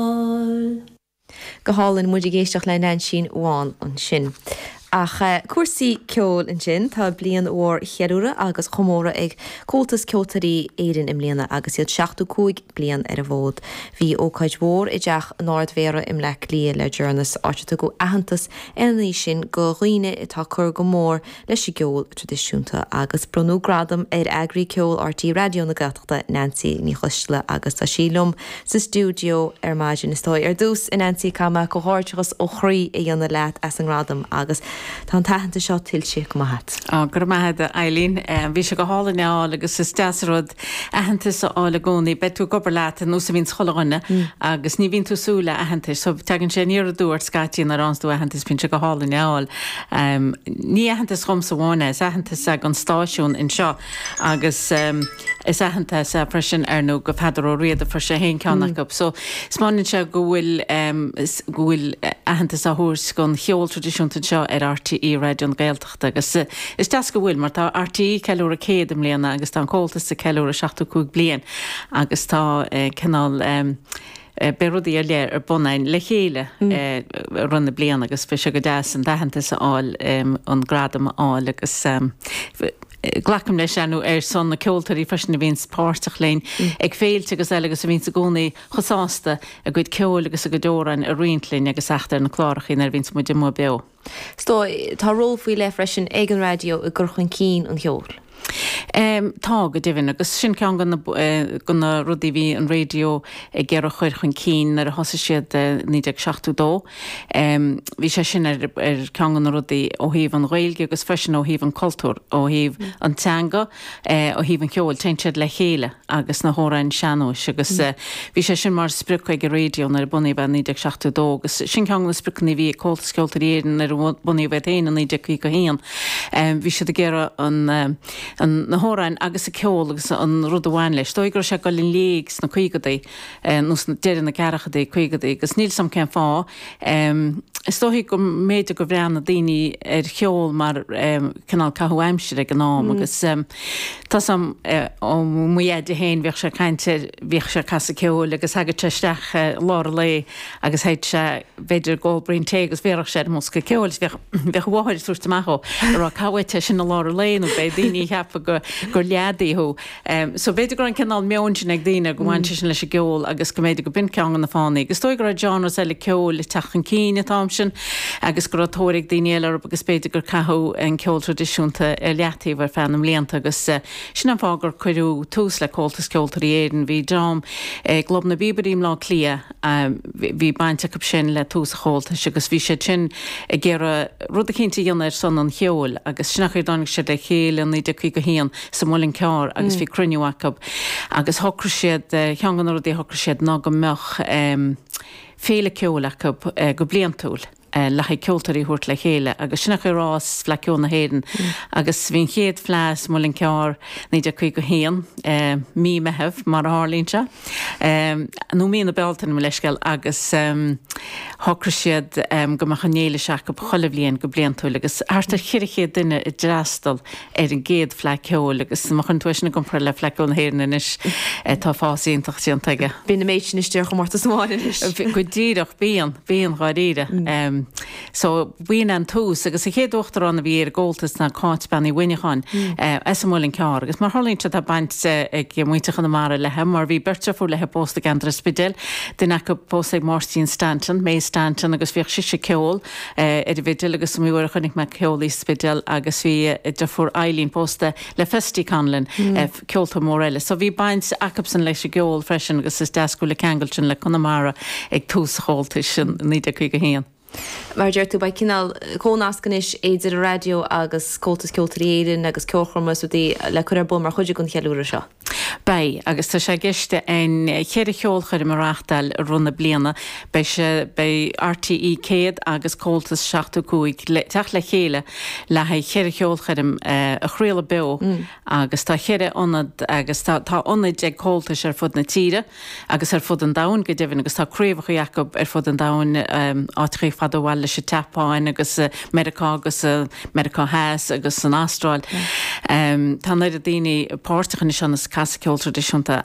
fáil. Go hálainn, muid ag éisteacht le Neainsín Bhán ansin. Ach cúrsaí ceoil ansin, tá bliain mhór cheiliúrtha agus chomórtha ag Comhaltas Ceoltóirí Éireann i mbliana agus iad seachtú cúig bliain ar an bhfód. Bhí ócáid mhór i dTeach an Ard-Mhéara i mBleá Cliath le deireannas, áit ar tugadh aitheantas ar an oíche sin go dhaoine atá ag cur go mór leis an gceol traidisiúnta agus bronnadh gradam ar Eagraí Ceoil RTÉ Raidió na Gaeltachta, Neansaí Ní Choisdealbha agus tá sí liom sa stiúideo ar maidin. Is dóigh, ar dtús, a Neansaí, caithfidh mé comhghairdeachas ó chroí a dhéanamh leat as an ngradam agus tá an t-aitheantas seo tuillte go maith a't. Ó, go raibh maith a'd, a Eileen. Bhí sé go hálainn é a fháil agus is deas rud aitheantas a fháil i gcónaí. Beidh tú ag obair leat ar nós a bhíonns chuile dhuine agus ní bhíonn tú ag súil le aitheantas. So, teagann sé aniar aduartha scaití nuair a fhánns tú aitheantas, bíonn sé go hálainn é a fháil. Ní aitheantas dhomsa amháin é, is aitheantas gon stáisiún anseo agus is aitheantas é freisin ar nó go Pheadar Ó Riada, fuair sé féin ceann acu. So, taispeánann sé go bhfuil go bhfuil aitheantas á thabhairt gon cheol traidisiúnta anseo ar RTÉ Raidió na Gaeltachta. agus is deas go bhfuil, mar tá RTÉ ag ceiliúradh 100 i mbliana agus tá an Comhaltas ag ceiliúradh 75 bliain agus tá cineál beidh rudaí ar leith ar bun a'inn le chéile i rith na bliana agus bhí sé go deas an t-aitheantas a fháil, an gradam a fháil agus glacaim leis ar son na ceoltóirí freisin a bhíonn páirteach linn ag féilte agus eile agus a bhíonns i gcónaí chomh sásta a gcuid ceoil agus a gcuid amhráin a roinnt linn agus theacht ar na clárachaí nuair a bhíonns muid amuigh beo. Sea, tá ról faoi leith freisin ag an raidió i gcur chun cinn an cheoil. Tá, go deimhin, agus sin ceann go na rudaí a bhí an raidió ag iarraidh a chur chun cinn nuair a thosaigh siad i 1972. Bhí sé sin ar cheann go na rudaí ó thaobh an Ghaeilge agus freisin ó thaobh an chultúir, ó thaobh an teanga, Ó thaobh an cheoil, téann siad le chéile agus na hamhráin sean-nóis agus bhí sé sin mar sprioc ag an raidió nuair a bunaíodh é i 1972 agus sin ceann go na spriocanna a bhí ag Comhaltas Ceoltóirí Éireann nuair a bunaíodh iad féin i 1951. Bhí siad ag iarraidh an na hamhráin agus an ceol agus an rud a bhain leis, is dóigh go raibh sé ag dul i léig sna caogadaí nó deireadh na gceathrachadaí, caogadaí agus níl 's 'am cén fáth. Is dóichí go mb'fhéidir go bhreathnaigh daoine ar cheol mar cineál caitheamh aimsire ag an am agus tá 's 'am mo dheaide féin bhíodh sé ag caint ar, bhíodh sé ag casadh ceoil agus thagadh sé isteach i lár an lae agus théadh sé b'fhéidir ag ól braon tae agus bhéarfadh sé ar an mbosca ceoil is bhíodh, bhíodh a mháthair ag tabhairt amach dhó ag rá caith uait é sin i lár an lae nó beidh daoine ag ceapadh gur leadaí thú. So, b'fhéidir go raibh an cineál meoin sin ag daoine, go bhaint leis sin leis an gceol agus go mb'fhéidir go b'in ceann go na fáthanna. Agus is dóigh go raibh genres eile ceoil ag teacht chun cinn an t-am sin agus go raibh tóir ag daoine eile orthu agus b'fhéidir gur caitheadh an ceol traidisiúnta ar leataobh ar feadh na mblianta agus sin an fáth gur cuireadh tús le Comhaltas Ceoltóirí Éireann. Bhí dream i gClub na bPíobairí i mBleá Cliath. Bhí baint acu sin le tús an Chomhaltais agus bhí siad sin ag iarraidh rud eicínt a dhéanamh ar son an cheoil agus sin an chaoi a dtáinig siad le chéile i 1951 sa Muileann gCearr agus bhí cruinniú acu agus shocraigh siad, ceann de na rudaí a shocraigh siad ná go mbeadh féile ceoil acu go bliantúil. le haghaidh ceoltóirí a thabhairt le chéile agus sin an chaoi ar fhás Fleadh Ceoil na hÉireann agus bhí an chéad fleadh sa Muileann gCearr 1951 Mí Meitheamh mar a tharlaíonn sé nó Mí na Bealtaine mo leithscéal agus shocraigh siad go mbeadh an fhéile seo acu chuile bhliain go bliantúil agus thart ar cheithre chéad duine a d'fhreastal ar an gcéad Fleadh Ceoil agus má chuireann tú é sin i gcomparáid le Fleadh Ceoil na hÉireann anois, tá fás iontach déanta aige. Bíonn an méid sin istigh ar chomórtas amháin anois. Go díreach, bíonn, bíonn dháiríre. So b'in an tús agus an chéad uachtarán a bhí ar an gComhaltas ná Cáit Bean Uí Mhuineacháin as an Muileann gCearr agus mar a tharlaíonn sé tá baint ag muintir Chonamara léi mar bhí beirt deirfiúr léi pósta i gCeantar an Spidéil, duine acu pósta ag Máirtín Stanton, Meaig Stanton, agus bhíodh sise ag ceol. ar an bhfidil agus ba mhinic a chonaic mé ag ceol í sa Spidéal agus bhí a deirfiúr Eileen pósta le Festy Conlon, ceoltóir mór eile. So bhí baint acubsan leis an gceol freisin agus is deas go bhfuil an ceangal sin le Conamara ag tús an Chomhaltais in 1951. Mar a deir tú, beidh cineál comhnasc anois idir an raidió agus Comhaltas Ceoltóirí Éireann agus ceolchoirmeacha is rudaí le cur ar bun mar chuid den cheiliúradh seo. Beidh, agus tá sé i gceist againn cheithre cheolchoirm a reáchtáil i rith na bliana. Beidh sé, beidh RTE100 agus Comhaltas 75 le teacht le chéile le haghaidh cheithre cheolchoirm a chraoladh beo agus tá cheithre ionad agus tá tá ionaid ag Comhaltas ar fud na tíre. agus ar fud an domhain go deimhin, agus tá craobhacha acu ar fud an domhain, áiteachaí fada ó bhaile, leithéidí an tSeapáin agus Meiriceá agus Meiriceá Theas agus san Astráil. Tá an oiread daoine páirteach anois ann is ag casadh ceol traidisiúnta.